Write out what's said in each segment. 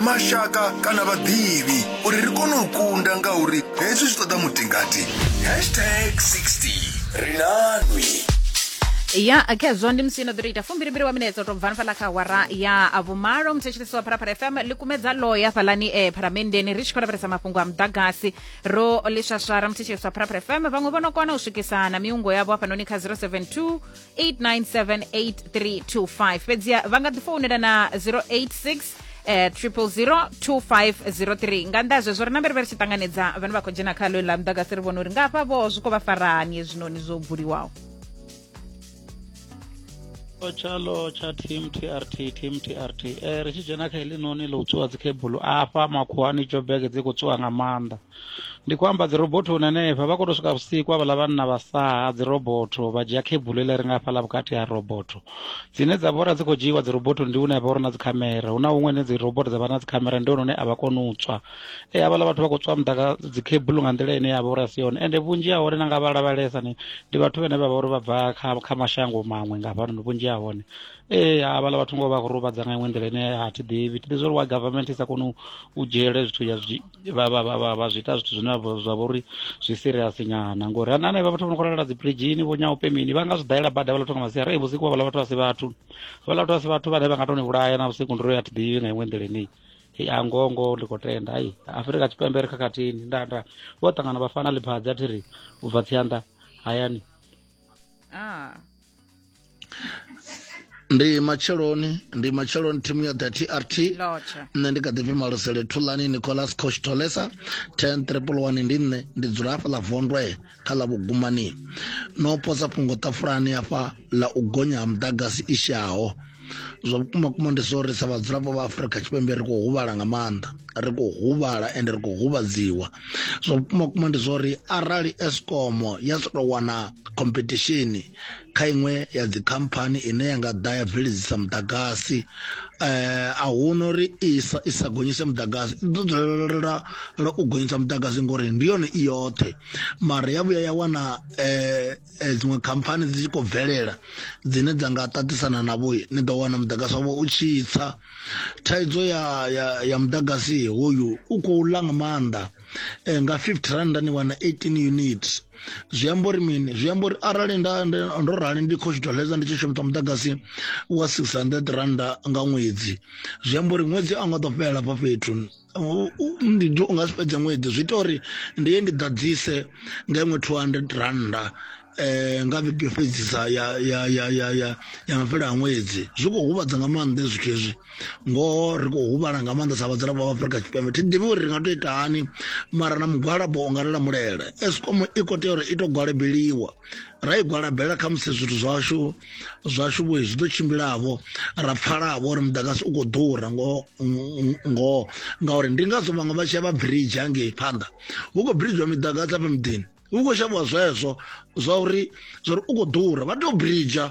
mashaka kana vhaḓivhi uri ri kone u kunda ngauri hezwi zwi ṱoḓa mutingati hashtag 60 ri na nwi ya khezwo ndi musino ḓo ri ita fumbilimbili wa minetse to bvani fhala kha awara ya a vhumalo muthetshelesi wa pharapara fm ḽi kumedza loya fhalani e pharamendeni ri tshi khou lavhelesa mafhungo a muḓagasi ro ḽiswaswara muthetshelesi wa pharapara fm vhaṅwe vho no kona u swikisana miungo yavho hafhanoni kha 072 8978325 fhedziha vha nga ḓi founela na 086 eh, 0002503 nga nnḓa ha zwezwo ri na mbere vha ri tshi ṱanganedza vhane vha khou dzhena kha ḽo ḽa muḓagasi ri vhona uri nga hafha vho zwi khou vha farani hezwinoni zwo buliwaho tshalo tsha team trt team trt eh, ri tshi dzhena kha heḽinoni ḽo u tswiwa dzikhebulo afha makhuwani jobege dzi khou tswiwa nga maanḓa ndi khou amba dzirobothoni henefha vha khou to swika vhusiku avhaḽa vhanna vha saha dzirobotho vha dzhia khebulu ḽe ri nga hafhaḽa vhukati ha robotho dzine dza vhora dzi khou dzhiiwa dzirobothoni ndi hune ha vha uri na dzikhamera hu na huṅwe ne dziroboto dza vha na dzikhamera ndi hone hune a vha koni u tswa e havhaḽa vhathu vha khou tswa muḓaka dzikhebulu nga nḓila ine ya vha uri a si yone ende vhunzhi ha hone na nga vha lavhalesa ni ndi vhathu vhene vha vha uri vha bva kha kha mashango maṅwe nga hafhanoni vhunzhi ha hone ee havhaḽa vhathu ngo vha khou ruvhadza nga iṅwe nḓila ine a thi ḓivhi thi ḓi zwa uri wa government i sa koni u dzhiele zwithu ya vha vha vha vha vha zwi ita zwithu zwine vha- zwa vha uri zwi serious nyana ngori ana anevha vhathu vho no khou lala dzi bridgini vho nyaupe mini vha nga zwi dalela bada vha latho nga masiari ei vhusiku vha vhala vhathu a si vhathu vha latho a si vhathu vhane vha nga to ni vhulaya na vhusiku ndiro ya thi ḓivhi nga iṅwe nḓila ine ei a ngongo ndi khou tenda ai afurika tshipembe ri khakhathini nda nda vho ṱangana vha fana ḽiphadzi a thi ri u bva tsianda hayani ah ndi matsheloni ndi matsheloni thimu ya the trt nṋe ndi kha ḓi pfi malosele thulani nicolas cosh tolesa ten triple one ndi nṋe ndi dzula hafha ḽa vondwe kha ḽa vhugumani no posa fhungo ṱafulani hafha ḽa u gonya ha muḓagasi i shaho zwa vhukuma kuma ndi zwo ri sa vhadzulapo vha afurika tshipembe ri khou huvhala nga maanḓa ri khou huvhala ende ri khou huvhadziwa zwa vhukuma kuma ndi zwo ri arali escom ya si tou wana khompethishini kha iṅwe ya dzikhamphani ine ya nga ḓa ya bveledzisa muḓagasi eh, a huna uri isa i sa gonyise muḓagasi i ḓo dzulelela u gonyisa muḓagasi ngori ndi yone i yoṱhe mara ya vhuya ya wana eh, eh, dziṅwe khamphani dzi tshi khou bvelela dzine dza nga ṱaṱisana navho ni ḓo wana muḓagasi wavho u tshi tsa thaidzo ya, ya, ya muḓagasi hoyu u khou ḽa nga maanḓa nga 50 randa ni wana 18 units zwi amba uri mini zwi amba uri arali nda ndo rali ndi khou tshitwa ledza ndi tshi shumisa muḓagasi wa 600 randa nga ṅwedzi zwi amba uri ṅwedzi a nga ḓo fhelela fha fhethu ndi u nga si fhedze ṅwedzi zwi ita uri ndi ye ndi ḓadzise nga iṅwe 200 randa eh nga vhege fhedzisa ya ya ya ya ya ya mafhelo a ṅwedzi zwi khou huvhadza nga maanḓa zwithu hezwi ngoho ri khou huvhala nga maanḓa sa vhadzulapo vha afurika tshipembe thi ḓivhi uri ri nga to ita hani mara na mugwalabo u nga ri lamulele escom i khou tea uri i to gwalabeliwa ra i gwalabela kha musi zwithu zwashu zwashu vho zwi ḓo tshimbilavo ra pfhalavho uri muḓagasi u khou ḓura ngoho ngoho ngauri ndi ngazwo vhaṅwe vha tshi ya vha bridge hangei phanḓa hu khou bridgewa miḓagasi afha miḓini hu khou shavhiwa zwezwo zwa uri zwa uri u khou ḓura vha tea u bridger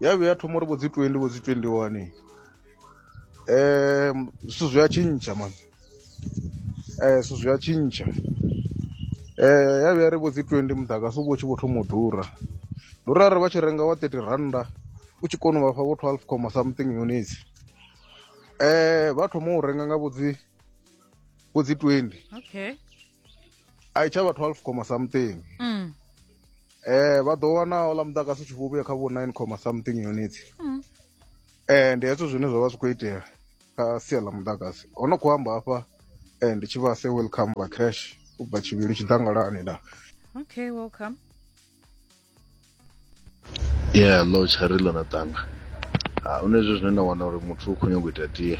ya vhuya ya thoma uri vho dzi 20 vho dzi 21 um eh, zwithu zwi a tshintsha mani um eh, zwithu zwi a tshintsha um eh, ya vhuya ri vho dzi 20 muḓagasi u vho tshi vho thoma u ḓura ndi uri arali vha tshi renga wa 30 rannda u tshi kona u vhafha vho 12 comma something units um vha thoma u renga nga vho dzi vho dzi 20 okay a i tsha vha 12 comma something mm. eh vha ḓo wana ola muḓagasi tshi vhuya kha vho 9 comma something units mm. eh ndi hezwo zwine zwa vha zwi khou itea kha sia ḽa muḓagasi ho no khou amba hafha eh ndi tshi vha se welcome vha crash u bva tshivhili tshiḓangalani da okay welcome yeah lo tshari ḽo na ṱanga ha u nezwo zwine na wana uri muthu u khou nyanga u ita tie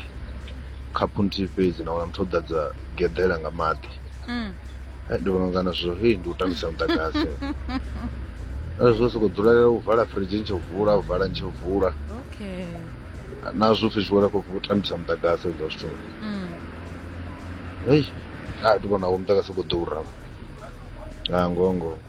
khaphu nthihi fhedzi na wana muthu o ḓadza geḓela nga maḓi mm. eh, ndi vhona ngana zwo hei ndi u tambisa muḓagasi eh, zwo sokou dzulela u vala firidzhi ntshe u vula u vala ntshe u vula na zwo pfhi zwiwela khou u tambisa muḓagasi ezwo zwithu mm. hei a ah, ndi vhona wo muḓagasi u khou ḓura a ah, ngongo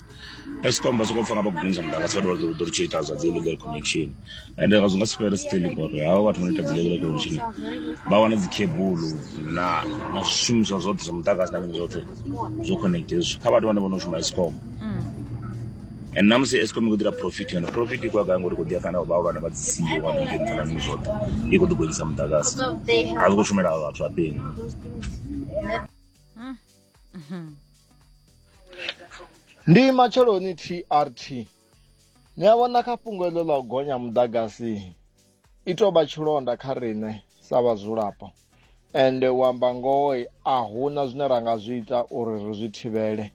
escom vha songo pfa nga vha gonyisa muḓagasi vhathu vha ḓo ḓo ri tshi ita zwa dzi illegal connection ende zwi nga si fhele still ngori havha vhathu vha no ita dzi illegal connection vha wana dzi cable na na zwishumiswa zwoṱhe zwa muḓagasi na mini zwoṱhe zwo connect hezwi kha vhathu vhane vho no shuma escom and na musi escom i khou ḓira profit yone profit i khou ya gai ngori i khou ḓi ya kana vhahulwane vha dzi siyo wa ḓi dzhenisa na mini zwoṱhe i khou ḓi gonyisa muḓagasi a zwi khou shumela vhathu vha peni ndi matsheloni trt ni a vhona kha fhungo iḽo ḽa u gonya muḓagasi i tou vha tshilonda kha riṋe sa vhadzulapo ende u amba ngoho a huna zwine ra nga zwi ita uri ri zwi thivhele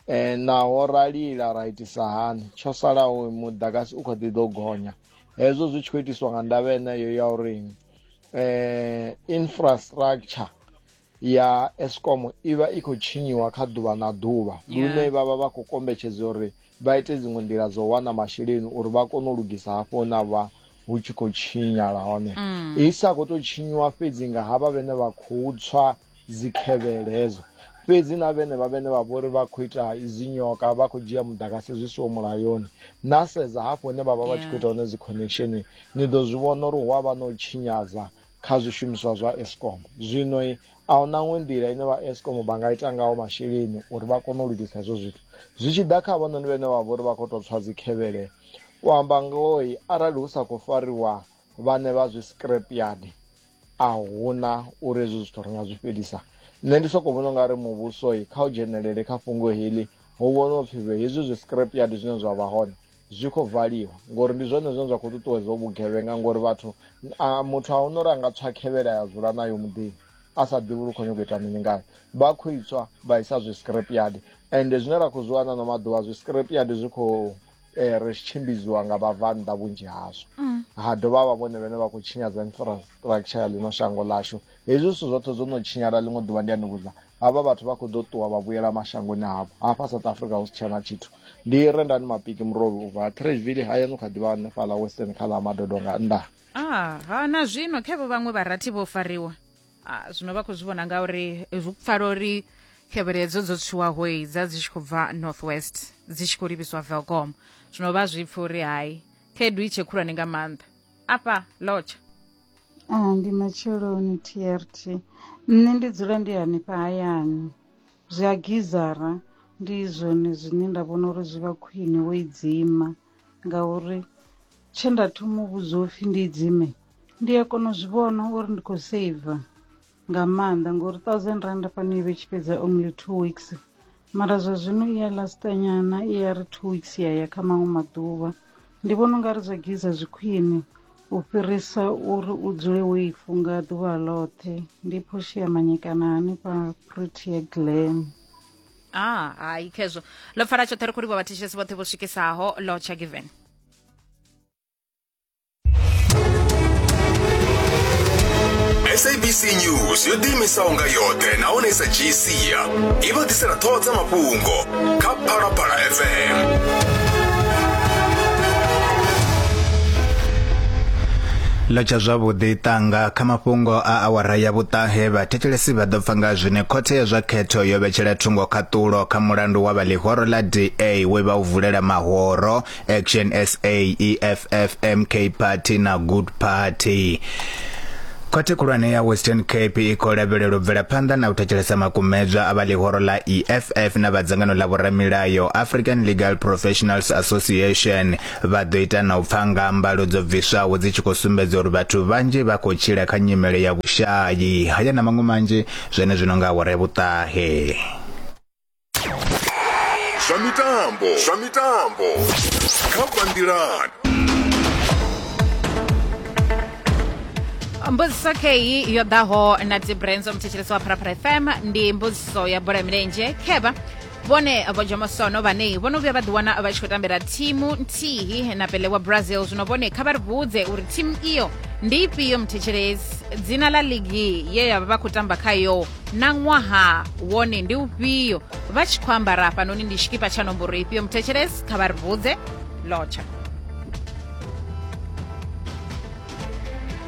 um naho ra lila ra itisa hani tsho salaho muḓagasi u kho ḓi ḓo gonya hezwo zwi tshi khou itiswa nga ndavha yeneyo ya uri um infrastructure ya escom i vha i khou tshinyiwa kha ḓuvha na ḓuvha lune vha vha vha khou kombetshedza uri vha ite dziṅwe nḓila dzo wana masheleni uri vha kone u lugisa hafho hune a vha hu tshi khou tshinyala hone mm. i sa khou tou tshinyiwa fhedzi nga havha vhene vha khou tswa dzikhevhele hedzo fhedzi na vhene vha vhene vha vhori vha khou ita izinyoka vha khou dzhia mudagasi zwi siwo mulayoni na sedza hafho hune vha vha vha tshi khou ita hone dzi connection ni ḓo zwi vhona uri hu a vha na u tshinyadza kha zwishumiswa zwa escom zwino a hu naṅwe nḓila ine vha escom vha nga ita ngaho masheleni uri vha kone u lugisa hezwo zwithu zwi tshi ḓa kha vhononi vhene vha vha uri vha khou tou tswa dzikhevhele u amba ngoi arali hu sa khou fariwa vhane vha zwi scrap yard a huna uri hezwo zwithu ri nga zwi fhelisa nṋe ndi sokou vhona ungari muvhusoi kha u dzhenelele kha fhungo heḽi hu vhona upfhi hezwi zwi scrap yard zwine zwa vha hone zwi khou valiwa ngori ndi zwone zwine zwa khou ṱuṱuwedza vhugevhenga ngori vhathu muthu a hone uri a nga tswa khevhela ya dzula nayo muḓini a sa ḓivhi uri khou nyoko ita mini ngayo vha khou itswa vha isa zwi scrap yard ende zwine ra khou zwi wana no maḓuvha zwi scrap yard zwi khou eh, ri tshimbidziwa nga vhabvannḓa vhunzhi hazwo mm. ha dovha vha vhone vhene vha khou tshinyadza infrastructure ya ḽino shango ḽashu hezwi zwithu zwoṱhe zwo no tshinyala ḽiṅwe ḓuvha ndi a ni vhudza havha vhathu vha khou ḓo ṱuwa vha vhuyela mashangoni havho hafha south africa hu si tshena tshithu ndi rendani mapiki murovhi u bva trashville hayani u kha ḓivha hanefhala western kha ḽa madodo nga nnḓa ah, ha na zwino khevo vhaṅwe vharathi vho fariwa ah, zwino vha khou zwi vhona ngauri zwi pfala uri khevheledzo dzo tswiwaho dza dzi tshi khou bva north west dzi tshi khou livhiswa velcom zwino vha zwi pfa uri hai khaedu i tshe khulwane nga maanḓa afha lotsha Ah, ndi matsheloni trt nṋe ndi dzula ndi hanefha hayani zwi a gizara ndi zwone zwine nda vhona uri zwi vha khwine wo i dzima ngauri tshe nda thoma u vhudzwa upfhi ndi idzime ndi a kona u zwi vhona uri ndi khou saver. nga maanḓa ngori thousand rand fhano i vhe tshi fhedza only two weeks mara zwa zwino i ya lasta nyana i ya ri two weeks ya ya kha maṅwe maḓuvha ndi vhona u nga ri zwa giza zwi khwine u fhirisa uri u dzule wo i funga ḓuvha ḽoṱhe ndi phoshi ya manyekana hanefha protea glam a ah, hai khezwo ḽo pfala tshoṱhe ri khou livha vhathetshelesi vhoṱhe vho swikesaho lotsha given sabc news yo ḓiimisaho nga yoṱhe nahone sa dzhii sia i vha ḓisela ṱhoho dza mafhungo kha phalaphala fm ḽo tsha zwavhuḓi ṱanga kha mafhungo a awara ya vhuṱahe vhathetshelesi vha ḓo pfa nga zwine khothe ya zwa khetho yo vhetshela thungo khaṱulo kha mulandu wa vha ḽihoro ḽa da we vha u vulela mahoro Action SA EFF MK Party na Good Party Khothe khulwane ya Western Cape i khou lavhelela u bvela phanḓa na u thetshelesa makumedzwa a vha ḽihoro ḽa EFF na vha dzangano ḽa vhoramilayo African Legal Professionals Association vha ḓo ita na u pfa nga mbalo dzo bviswaho dzi tshi khou sumbedza uri vhathu vhanzhi vha khou tshila kha nyimele ya vhushayi haya na maṅwe manzhi zwenezwino nga awara ya vhuṱahe. zwa mitambo zwa mitambo kha bandiland mbudziso kheyi yo ḓaho na dibrands omthetshelesi wa pharapara fm ndi mbudziso ya bola ya milenzhe khevha vhone vho jomosono vhane vho no vhuya vha ḓiwana vha tshi khou tambela thimu nthihi na pele wa brazil zwino vhone kha vha ri vhudze uri thimu iyo ndi ifhio mthetshelesi dzina ḽa ligi ye ya vha vha khou tamba khayo na ṅwaha wone ndi ufhio vha tshi khou ambara hafhanoni ndi tshikipa tsha nomboro ifhio muthetshelesi kha vha ri vhudze lotsha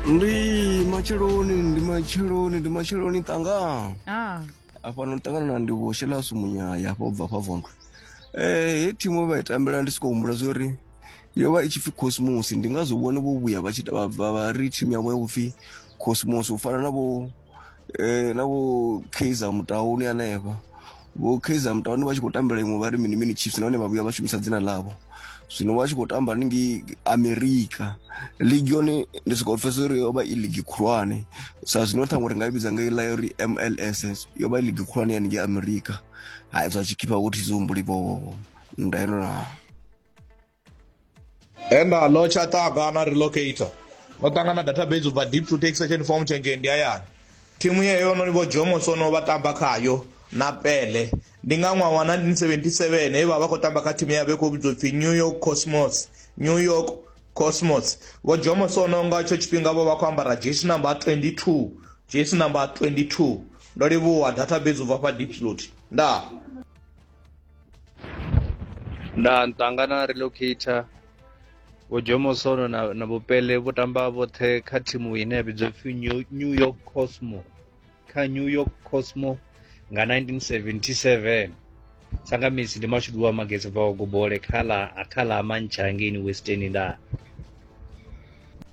ndi matsheloni ndi matsheloni ndi matsheloni tanga ah. afha no tangana na ndi vho shelasu munyaya afha ubva afha vondwe um eh, he thimu vha i tambela ndi sokou humbula zwa uri yo vha i tshi pfi cosmos ndi ngazwo vhone vho vhuya vha tshi vha ri thimu yavho ya vhupfi cosmos u fana na vho eh, na vho kaizer mutauni hanefha vho kaizer mutauni vha tshi khou tambela iṅwe vha ri mini mini chiefs nahone vha vhuya vha shumisa dzina ḽavho zwino vha tshi khou tamba ningi amerika ligi yone ndi sokou pfesa uri yo vha i ligi khulwane sa zwino ṱhaṅwe ri nga i vhidza nga ila uri mls yo vha i ligi khulwane ya ningi amerika ha zwa tshikhipha vho thizihumbuli vhowo nda yenonaa enda lo tsha ṱaga na relocator no ṱangana database ubva deep to take session form change ndi hayani thimu yeyo no ni vho jomo sono vha tamba khayo na pele ndi nga ṅwaha wa 1977 he vha vha khou tamba kha thimu ya vhe khou vhidzwa pfhi new york cosmos new york cosmos vho jomo sono nga tsho tshifhinga vho vha khou ambara jesi number 22 jesi number 22 ndo livhuwa database ubva fha deep slot ndaa nda ntanga na relocator vho jomosono na, na vhupele vho tamba vhoṱhe kha thimu ine ya vhidzwa pfi New- new york cosmo kha new york cosmo nga 1977 sangamisi ndi mashudu wa magezi bvaho gobole kha ḽa kha ḽa mantsha hangeini western nda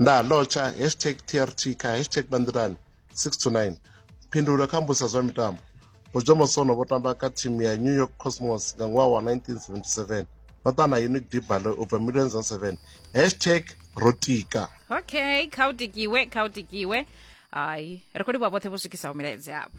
ndalotsha hashtag trt kha hashtag bandirani 6 to 9 phindulo kha mbusa zwa mitambo bojo mosono vho tamba kha thimu ya new york cosmos nga ṅwaha wa 1977 vha ṱa na unique dibalo u bva millions on 7 hashtag rotika okay kha u tikiwe kha u tikiwe hayi ri khou livhuwa vhoṱhe vho swikisaho milaedza yavho